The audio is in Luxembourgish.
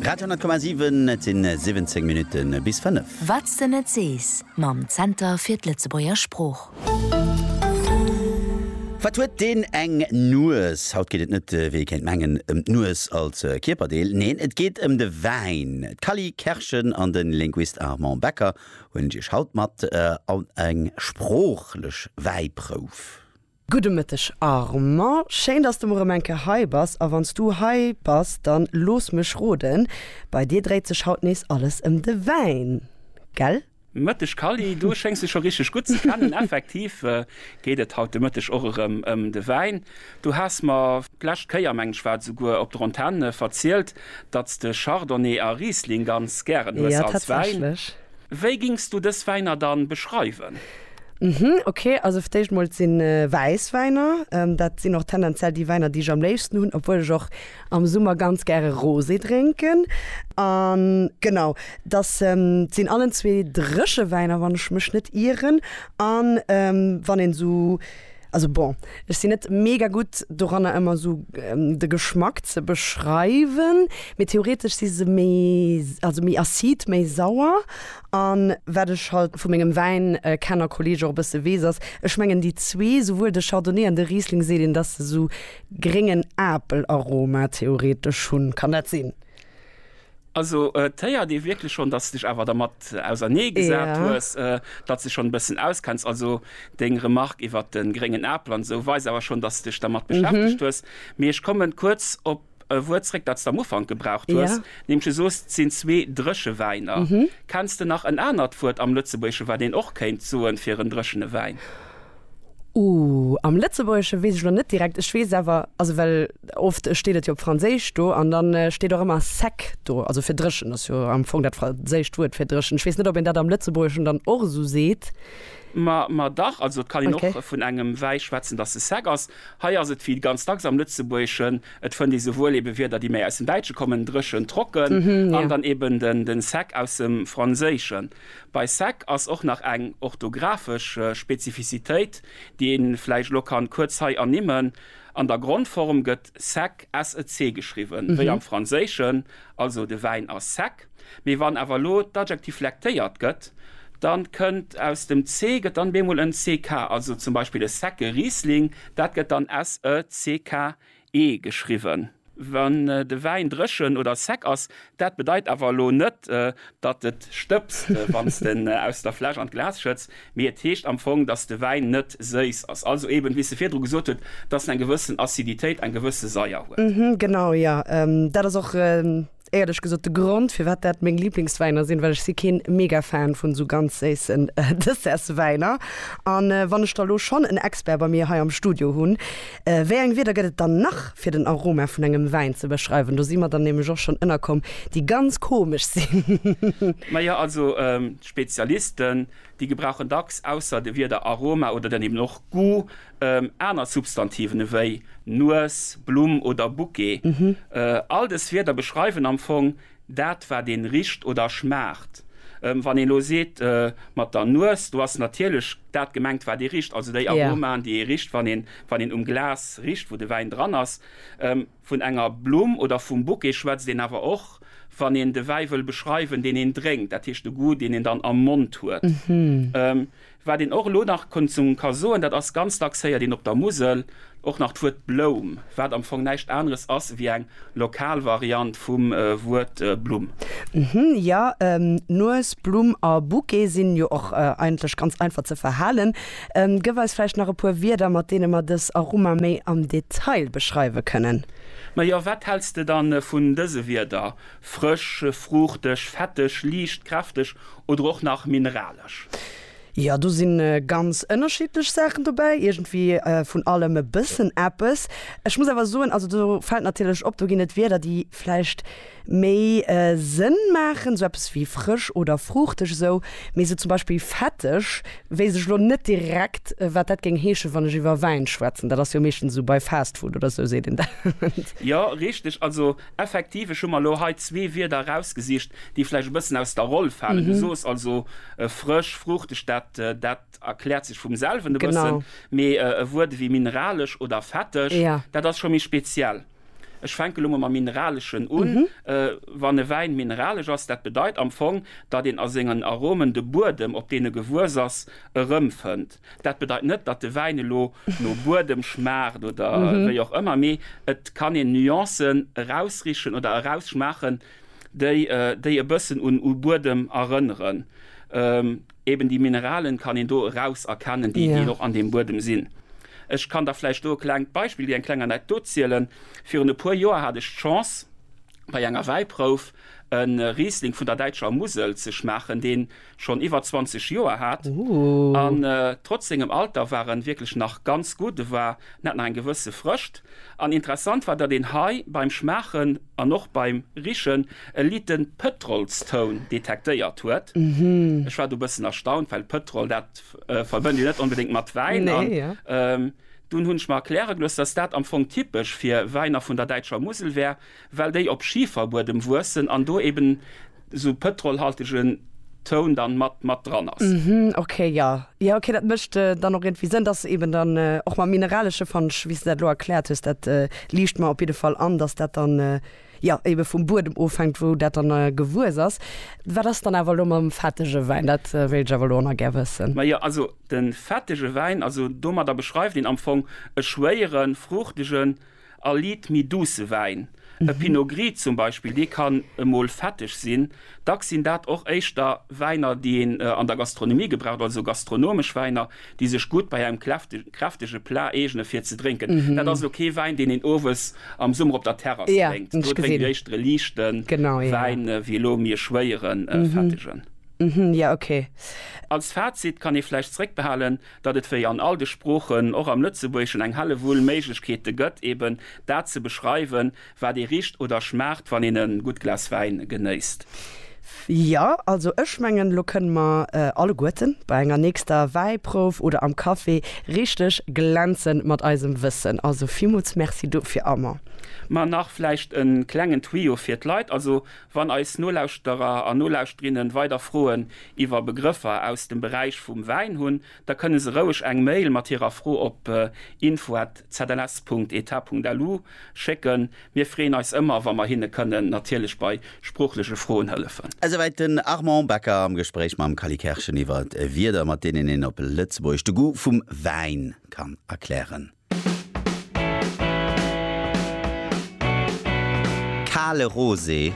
Radio 10,7, et sinn 17 Minutte bis 5. Wat s de net sees mam Zenter fir d'Lëtzebuerger Sprooch. Wat huet deen eng Nues? Haut geet et net, wéi ee kéint mengen, ëm d'Nues als Kierperdeel. Neen, et geet ëm de Wäin. D'Cally Kerschen an de Linguist Armand Becker huelen Iech haut mat an eng sproochlech Wäiprouf. Gudde Mëtteg Armand, schéin dass de mol rem eng Kéier hei bass. A wanns du hei bass, dann looss mech roden, bei dir dréit sech haut nees alles em de Wäin, gell? Mëtteg Kally, du schéngs dech scho richteg gutt ze kennen. Effektiv geet et haut de Mëtteg och erem em de Wäin. Du has mer d'lescht Kéier, mengen ech war et esouguer, op der Antenne verzielt, datts de Chardonnay a Riesling ganz gären hues als Wäin. Jo, tatsächlech. Wéi gings du dës Wäiner dann beschreiwen? Hm, ok, also fir d'éischt mol, et sinn Wäisswäiner. Dat sinn och tendenziell déi Wäiner, déi ech am léifsten hunn, obwuel ech och am Summer ganz gäre Rosé drénken. An genau, dass sinn allen zwee Dréchewäiner, wann ech mech net ieren. An wann een esou. Also bon, ech sin net mega gudd doranner emmer esou de Geschmack ze beschreiwen, mee theoretesch si se méi, also méi acide, méi sauer an wat ech halt vu mengem Wäin Kenner Kolleg och e bësse wees ass, ech mengen déi zwee, souwuel de Chardonnay an de Riesling, seet een dass se esou gréngen Apelaroma theoretesch hun, kann dat sin? Also et héiert ee wierklech schonn, datt s dech awer dermat ausernee gesat Ja. hues, datt s dech schonn e bëssen auskenns. Also deng Remarque iwwert de gréngen Apel an esou weist awer schonn, datt s dech dermat beschäftegt hues. Mee ech kommen kuerz op e Wuert zréck, dat s de am Ufank gebraucht Ja. hues, nämlech du soos, et sinn zwee Dréchewäiner. Kenns de nach en anert Wuert am Lëtzebuergesche wat een och kéint soen fir en dréchene Wäin? Ooh, am Lëtzebuergesche weess ech elo net direkt. Ech weess awer, also well oft steet et jo op Franséisch do an da steet och ëmmer sec do, also fir dréchen, ass jo am Fong dat franséischt Wuert fir dréchen. Ech weess net, ob een dat am Lëtzebuergeschen dann och esou seet. Ma, ma dach, also et kann een och vun engem Wäi schwätzen, dass e sec ass. Hei ass et wéi ganz dacks am Lëtzebuergeschen, et fënnt ee souwuel ebe Wierder, déi méi aus dem Däitsche kommen, dréchen, trocken, an dann eben den, den sec aus dem Franséischen. Bei sec ass och nach eng orthographesch Spezifizitéit, déi ee vläicht elo kann kuerz hei ernimmen, An der Grondform gëtt sec sec geschriwwen, wéi am Franséischen, also de Wäin ass sec. Mee wann awer elo d'Adjektiv flektéiert gëtt, da kënnt aus dem ce gëtt dann bemol en ck, also zum Beispill e secke Riesling, dat gëtt dann sec e geschriwwen. Wann de Wäin dréchen oder sec ass, dat bedeit awer elo net, datt et stëbst, wann s de en aus der Fläsch an d'Glas schëtts, mee et heescht am Fong, datt de Wäin net séiss ass, also eben, wéi s de virdru gesot hutt, datt en eng gewëssen Aciditéit, eng gewësse Saier huet. Genau, jo, dat ass och Éierlech gesot, de Grond firwat dat meng Liblingswäiner sinn, well ech si keen mega Fan vun esou ganz séissen Dessertswäiner. An wann ech da lo schonn en Expert bei mir hei am Studio hunn, wéi eng Wierder gëtt et dann nach fir den Aroma vun engem Wäin ze beschreiwen? Do si mer dann nämlech och schonn ënnerkomm, déi ganz komesch sinn. Majo, also d'Spezialisten, déi gebrauchen dacks ausser de Wierder Aroma oder dann eben och Goût Aner Substantiven ewéi Nues, Blumm oder Bouquet, all dës Wierder beschreiwen am Fong dat, wat een richt oder schmaacht. Wann een elo seet mat der Nues, do ass natierlech dat gemengt, wat ee richt, also déi Aromaen, déi ee richt, wann een um Glas richt, wou de Wäin dran ass. Vun enger Blumm oder vum Bouquet schwätzt een awer och, wann een de Wäi wëll beschreiwen, deen een drénkt, dat heescht de Goût, deen een dann am Mond huet. Wat een och elo nach ka soen, dat ass, ganz dacks héiert een op der Musel och nach d'Wuert Bloum, wat am Fong näischt aneres ass ewéi eng lokal Variant vum Wuert Blumm. Jo, Nues, Blumm a Bouquet sinn jo och eigentlech ganz einfach ze verhalen. Gëff eis vläicht nach e puer Wierder, mat deene mer dës Aroma méi am Detail beschreiwe kënnen. Majo, wat häls de dann vun dëse Wierder, frësch, fruuchteg, fetteg, liicht, kräfteg oder och nach mineralesch? Jo, do sinn ganz ënnerschiddlech Saachen dobäi, iergendwéi vun allem e bëssen eppes. Ech muss awer soen, also do fält natierlech op, do ginn et Wierder, déi vläicht. méi Sënn maachen, sou eppes wéi frësch oder fruuchteg esou, mee sou zum Beispill fetteg weess ech elo net direkt wat dat géing heeschen, wann ech iwwer Wäin schwätzen, dat ass jo meeschtens esou bei Fast Food oder esou seet een dat. Jo richteg, also effektiv ech hu mer elo hei zwee Wierder erausgesicht déi vläicht e bëssen aus der Roll falen. Du soos also frësch, fruuchteg, dat dat erkläert sech vum selwen e bëssen, mee e Wuert ewéi mineralesch oder fetteg, dat ass scho méi speziell. Ech fänke lo mol mam Mineraleschen un. Wann e Wäin mineralesch ass, dat bedeit am Fong, datt een a sengen Aromen de Buedem, op deen e gewuess ass, erëmfënnt. Dat bedeit net, datt de Wäin elo no Buedem schmaacht oder wéi och ëmmer, mee et kann een Nuancen erausrichen oder erausschmaachen, déi e bëssen u Buedem erënneren. Eben déi Mineralen kann een do eraus erkennen, déi een och an deem Buedem sinn. Ech kann da vläicht do e klengt Beispill gi, eng kleng Anekdot zielen. Virun e puer Joer hat ech d'Chance, bei enger Wäiprouf e Riesling vun der däitscher Musel ze schmaachen, deen schonn iwwer 20 Joer hat. An trotz sengem Alter war en wierklech nach ganz gutt. E war, en hat nach eng gewësse Frëscht. An interessant war, datt een hei beim Schmaachen an och beim Richen e liten Pëtrolstoun detektéiert huet. Ech war do e bëssen erstaunt, well Pëtrol, dat verbënnt een net onbedéngt mat Wäin. An dunn hunn ech mer erkläre gelooss, dass dat am Fong typesch fir Wäiner vun der däitscher Musel wär, well déi op Schiferbuedem wuessen an do eben esou pëtrolhaltegen Toun dann mat mat dran ass. Ok, jo, jo, ok, dat mécht dann och iergendwéi Sënn, dass eben dann och mam Mineralesche, fand ech, wéi s de dat elo erkläert hues, dat liicht mer op jidde Fall an, dass dat dann. jo ebe vum Buedem ofhänkt, wou dat dann gewuess ass. Wat ass dann awer elo mam fettege Wäin? Dat wéilt ech awer elo nach gär wëssen. Majo, also de fettege Wäin, also domadder beschreift een am Fong e schwéiere, fruuchtege a liit méi douce Wäin. E Pinot Gris zum Beispill, dee kann emol fetteg sinn. Dacks sinn dat och éischter Wäiner, déi een an der Gastronomie gebraucht, also gastronomesch Wäiner, déi sech gutt bei engem kräftege Plat eegene fir ze drénken. Dat ass elo kee Wäin, deen een owes am Summer op der Terrass drénkt. Do drénkt een éischter e liichte Wäin, wéi elo méi e schwéiere, fettegen. Als Fazit kann ee vläicht zréckbehalen, datt et wéi an all de Sproochen och am Lëtzebuergeschen eng Hellewull Méiglechkeete gëtt, eeben dat ze beschreiwen, Wat ee richt oder schmaacht wann een en gudd Glas Wäin genéisst. Jo, also ech mengen lo kënnen mer alleguerten bei enger nächster Wäiprouf oder am Café richteg glänzen mat eisem Wëssen. Also villmools Merci dofir Armand. Ma nach vläicht en klengen Tuyau fir d'Leit, also wann eis Nolauschterer an Nolauschterinnen weider Froen iwwer Begrëffer aus dem Beräich vum Wäin hunn, da kënne se roueg eng Mail mat hirer Fro op info@zls.eta.lu schécken. Mir freeën eis ëmmer, wa mer hinne kënnen natierlech bei sproochleche Froen hëllefen. Esouwäit den Armand Becker am Gespréich mam Kally Kerschen iwwer Wierder, mat deenen een op Lëtzebuergesch de Goût vum Wäin kann erklären. Kale Rosé.